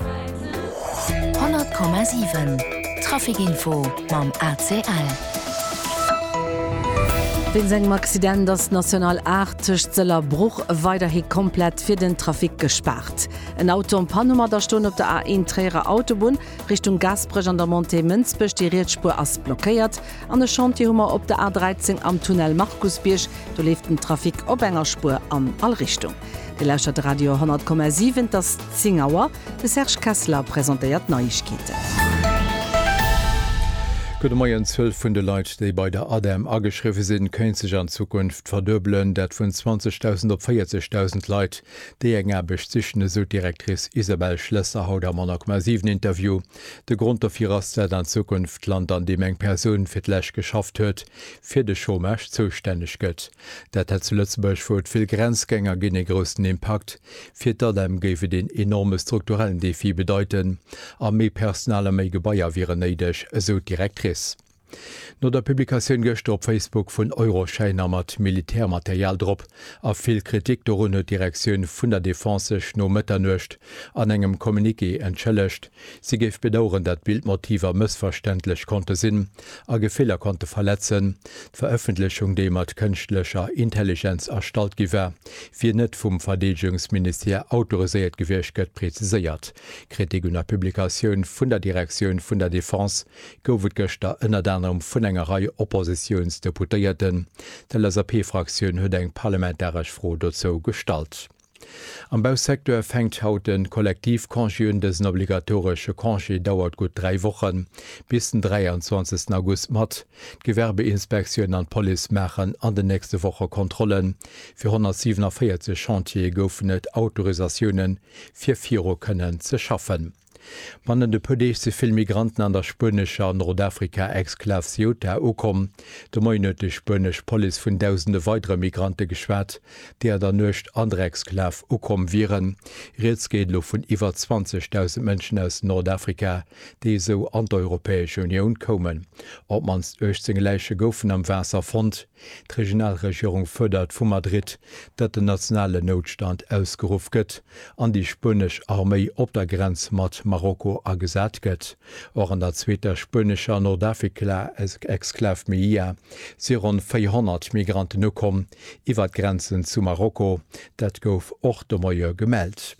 100,7 Trafic Info mam ACL. Wéinst engem Accident ass d'National 8 tëscht Sëll a Bruch weiderhi komplett fir den Trafic gespaart. En Auto am Panne mat Astoen op der A1 Tréierer Autobunn Richtung Gaasperech an der Montée Mënsbech, déi riets Spuer ass blockéiert. An e Chantier hu mer op der A13 am Tunnel Markusbierg, do leeft den Trafic op enger Spuer an all Richtung. Dir lauschtert de Radio 10,7, et ass 10 Auer. De Serge Kessler presentéiert d'Neiegkeeten. Gudde Moien, D'Zuel vun de Leit, déi bei der ADEM ageschriwwe sinn, kéint sech an Zukunft verduebelen. Dat vun 20.000 op 40.000 Leit, déi eng Aarbecht sichen, esou d'Directrice Isabelle Schlesser haut am 10,7 Interview. De Grond dofir ass, dat an Zukunft d'Land, an deem eng Persoun fir d'lescht geschafft huet, fir de Chômage zoustänneg gëtt. Dat hätt zu Lëtzebuerg, wou et vill Grenzgänger ginn, ee groussen Impakt. Fir d'ADEM géif et een enorme strukturellen Defi bedeiten a méi Personal a méi Gebaier wieren néideg, esou d'Directrice. No der Publikatioun gëschter op Facebook vun Euroschäiner mat Militärmaterial drop a vill Kritik dorun huet d'Direktioun vun der Defense sech no Mëtternuecht an engem Communiqué entschëllegt, Si géif bedaueren, dat Bildmotiver mëssverständlech konnte sinn a Gefiller konnte verletzen. D'Verëffentlechung, déi mat kënschtlecher Intelligenz erstallt gi war, wier net vum Verdeedegungsministère autoriséiert gewiescht, gëtt preziséiert. Kritik un der Publikatioun vun der Direktioun vun der Defense gouf et gëschter ënnert anerem vun enger Rei Oppositiounsdeputéierten. D'LSAP-Fraktioun huet eng parlamentaresch Fro dozou gestallt. Am Bausecteur fänkt haut de Kollektivcongé un. Dësen obligatoresche Congé dauert gutt dräi Wochen, bis den 23 August mat. D'Gewerbeinspektioun an d'Police maachen an den nächste Woche Kontrollen. Fir 147 Chantiere goufen et Autorisatioune fir viru kënnen ze schaffen. Bannent e puer Deeg si vill Migranten an der spuenescher Nordafrika-Exklav Ceuta ukomm. De Moien huet déi spuenesch Police vun dausende weidere Migrante geschwat, déi an der Nuecht an der Exklav ukomm wieren. Rieds geet elo vun iwwer 20.000 Mënschen aus Nordafrika, déi esou an d'Europäesch Unioun koumen. Op d'mannst 18 Läiche goufen am Waasser fonnt. D'Regionalregierung fuerdert vu Madrid, datt den nationalen Noutstand ausgeruff gëtt an déi spuenesch Arméi op der Grenz mat Marokko agesat gëtt. Och an der zweeter spuenescher Nordafrika-Exklav Melilla si ronn 400 Migranten ukomm iwwer d'Grenzen zu Marokko. Dat gouf och de Moie gemellt.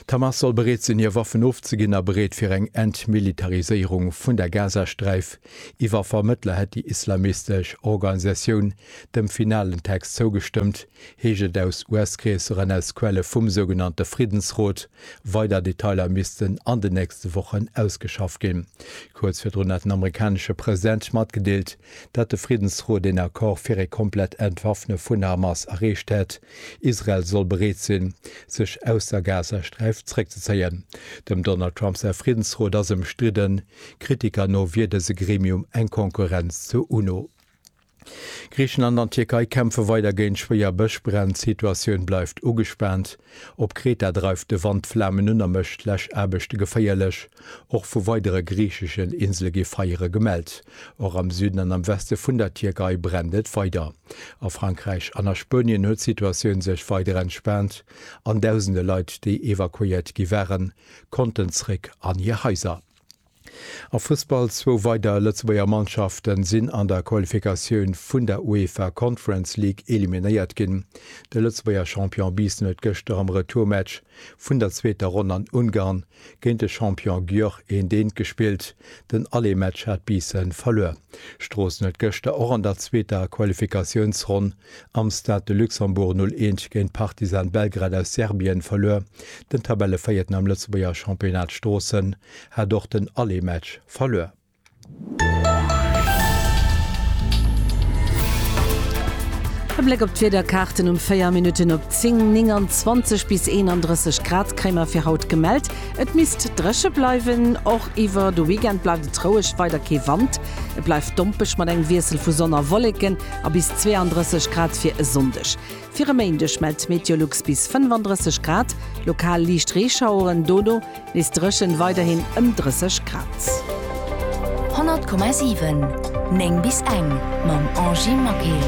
D'Hamas soll bereet sinn, hir Waffen ofzeginn a bereet fir eng Entmilitariséierung vun der Gazasträif. Iwwer Vermëttler hätt déi islamistesch Organisatioun dem finalen Text zougestëmmt, heescht et aus US-Kreesser an aus Quelle vum sougenannte Friddensrot. Weider Detailer missten an den nächste Wochen ausgeschafft ginn. Kuerz virdrun hat den amerikanesche President matgedeelt, datt de Friddensrot een Accord fir ee komplett Entwaffne vun der Hamas erreecht hätt. Israel soll bereet sinn, sech aus der Gazasträif zeréckzezéien. Dem Donald Trump säi Friddensrot ass ëmstridden, Kritiker no wier dëse Gremium eng Konkurrenz zur UNO. Griichenland an d'Tierkei kämpfe weider géint schwéier Bëschbränn, d'Situatioun bleift ugespaant. Op Kreta dreift de Wand d'Flamen un a mécht d'Läschaarbechte geféierlech. Och vu weidere griicheschen Insele gi Feiere gemellt. Och am Süden an am Weste vun der Tierkei brennt et weider. A Frankräich an a Spuenien huet d'Situatioun sech weider entspaant an dausende Leit, déi evakuéiert gi waren, konnten zréck an hir Haiser. A Fussball, Zwou weider Lëtzebuerger Mannschafte sinn an der Qualifikatioun vun der UEFA Conference League eliminéiert ginn. De Lëtzebuerger Champion Biissen huet gëschter am Retourmatch vun der zweeter Ronn an Ungarn Géint de Champion Györ een deent gespillt, den alle Match hat Biissen verluer. Stroossen huet gëschter och an der zweeter Qualifikatiounsronn am Stade de Luxembourg 0 Eent géint Partizan Belgrad aus Serbien verluer. Den Tabellevéierten am Lëtzebuerger Championnat Stroossen hat och den alle Match verluer. E Bléck op d'Wiederkaarten um 4 Minutten op 10, 29 bis 31 Grad kréie mer fir haut gemellt. Et misst dréche bleiwen, och iwwer de Weekend bleift et roueg, weider kee Wand. Et bleift dompeg mat engem Wiessel vu Sonn a Wolleken a bis 32 Grad fir e Sonndeg. Fir e Méindeg mellt d'Meteolux bis 35 Grad, lokal liicht Reeschaueren, dono nees dréchen, weiderhin ëm 30 Grad. 100,7 9 bis eng mam Angie Maquet.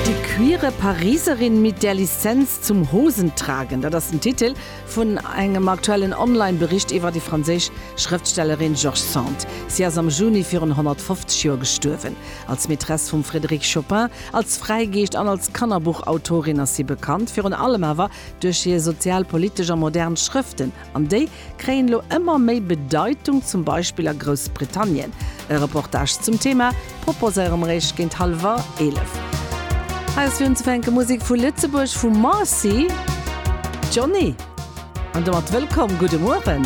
Die queere Pariserin mit der Lizenz zum Hosentragen, dat ass den Titel Vun engem aktuellen Online-Bericht iwwer déi franséisch Schrëftstellerin George Sand. Si ass am Juni virun 150 Joer gestuerwen. Als Maîtresse vum Frédéric Chopin, als Fräigeescht an als Kannerbuchautorin ass si bekannt, virun allem awer duerch hir sozial, politesch a modern Schrëften. An déi kréien elo ëmmer méi Bedeitung, zum Beispill a Groussbritannien. E Reportage zum Thema. Proposéiere mer Iech géint hallwer 11. Hei ass fir unzefänke Musek vu Lëtzebuerg vum Marcy, Johnny. An domat wëllkomm, gudde Mueren.